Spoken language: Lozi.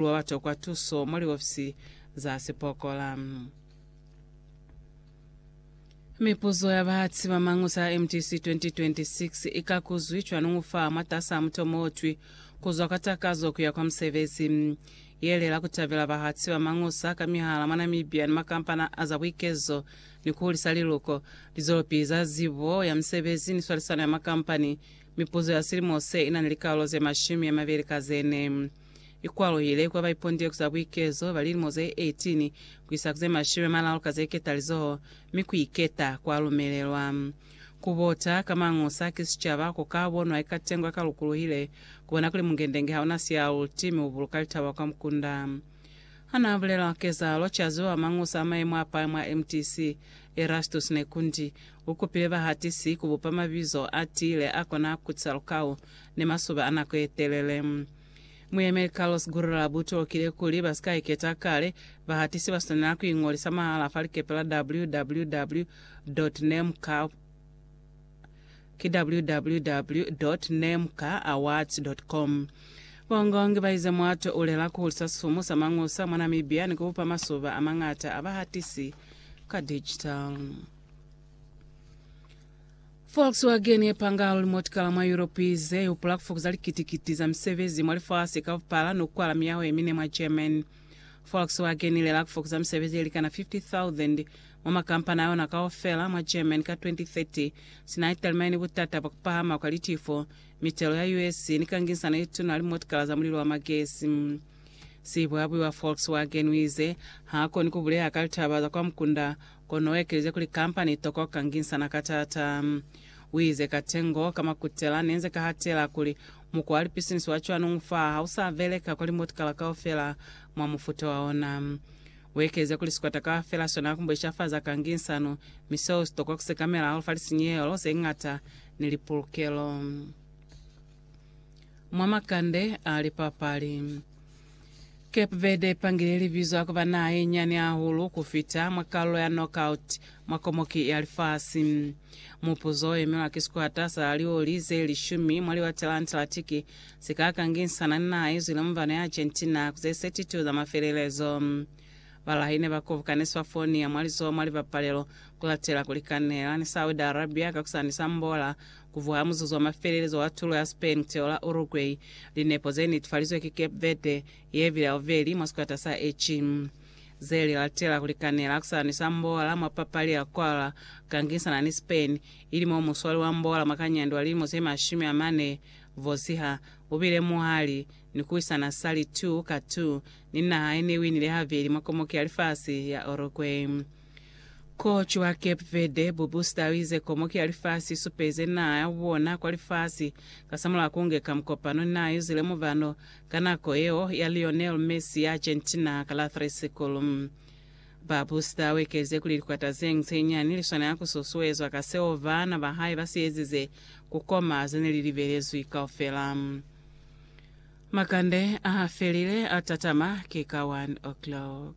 Lu ba tokwa tuso mwa liofisi za sipokola. Mipuzo ya bahatsi ba Mañusa ya MTC 2026 i kakuzwi cwanuñu fa mwatas'a mutomo o twi, Ku zwa kwa takazo ku ya kwa musebezi. Yele la ku tabela bahatsi ba Mañusa ka mihala mwa Namibia ni makampani a za buikezo ni ku hulisa liluko, lizwelopili za zibo ya musebezi ni swalisano ya makampani, mipuzo ya silimo se i na ni likaulo ze mashumi a mabeli ka ze ne. ikwalohile kwa baipondileku za buikezo ba lilimo ze 18 kuisa ku ze mashumi amalalu ka ze ketalizoho, mi kuiketa kwa lumelelwa. Kubota ka Mangusa ki sicaba ko ka bonwa eka tengo ya ka lukuluhile, kubona kuli mungendenge hauna sialuti mi ubuluka litaba kwa mukunda. Hana bulela kezalo, caziwa Mangusa a maemo a pale mwa MTC, Erastus Nekundi, ukupile bahatisi kubupa mabizo a tiile akona kutisa lukau ni masuba a nako ye telele. Muyemeli Carlos Gurra bu tokile kuli ba si ka iketa kale, bahatisi ba swanela ku iñolisa mahala fa likepe la www. Nemka. Ki www. Nemkaawards. Com. Bongongi ba ize muato u lela ku hulisa sumu sa Mangusa mwa Namibia ni ku bupa masuba a mañata a bahatisi ka digital. Volkswagen ye panga luli motikala mwa Yuropi ze hupula ku fokuza likiti-kiti za misebezi mwa lifasi ka bupala ni ku kwala miyaho ye mine mwa Germany. Volkswagen i lela ku fokuza misebezi ye likana 50,000 mwa makampani a yona kaufela mwa Germany ka 2030, sina i talimani ni butata bwa ku pahama kwa litifo, mitelo ya US, ni kangisano ye tuna ni motikala za mulilo wa magesi. Sibuabui wa Volkswagen u ize, Ha koni ku buleha ka litaba za kwa mukunda Kono uekelize kuli, Kampani itoko kangisana ka taata. Uize, Katengo ka makutela nenze kahatela kuli, mukwa wa lipisinisi wa cwanu ufaa hausa beleka kwa limotikala kaufela mwa mufuta wa ona. Uekelize kuli, Sikwata kaufela sona kumbe sha fa za kangisano, mi seo sitoko kusekamela hahulu fa lisinyehelo zeñata ni lipulukelo mwa makande a lipapali. Cape Verde ipangile libizo la kuba naha ye nyani hahulu ku fita mwa kalulo ya knockout mwa Komoki ya Lifasi. Mupuzo o emelwa ki sikwata sa lioli ze lishumi mwa liwate la Antarctic se ka kanginisana ni naha ye zwile mubano ya Argentina ku ze 32 za mafelelezo. Balahi ne ba kobukani Swafonia mwa lizoho mwa libapalelo ku latela ku likanela ni Saudi Arabia ka kusani sa Mbola Kuvuha ha muzuzu wa mafelelezo wa tulo ya Spain kuteola Uruguay, linepo zenetefalizwe ki Cape Verde yevile haubeli mwa sikwata sa H. Zeli latela kulikanela kusalanisa mbola mwa papali ya kwala kukangisana ni Spain, ili mo muswali wa mbola mwa kanyandi wa lilimo zemashumi amane vosiha ubile muhali ni kuwisana sali 2 ka 2 ni naha yenewinile habeli mwa komoki ya lifasi ya Uruguay. Ko cwa Cape Verde, Bubusta uize komoki ya lifasi isupeze naha ya bona kwa lifasi kasamulaho kunge ka mukopano naa yuzile mubano ka nako yeo ya Lionel Messi ya Argentina ka la 3 Sikulu. Babusta uekeze kuli likwata zeñwi zenyani liswanela kususuezwa ka seo baana bahae basiezize kukoma zene lilibelezwi kaufela. Makande ahafelile atatama ki ka 1 o'clock.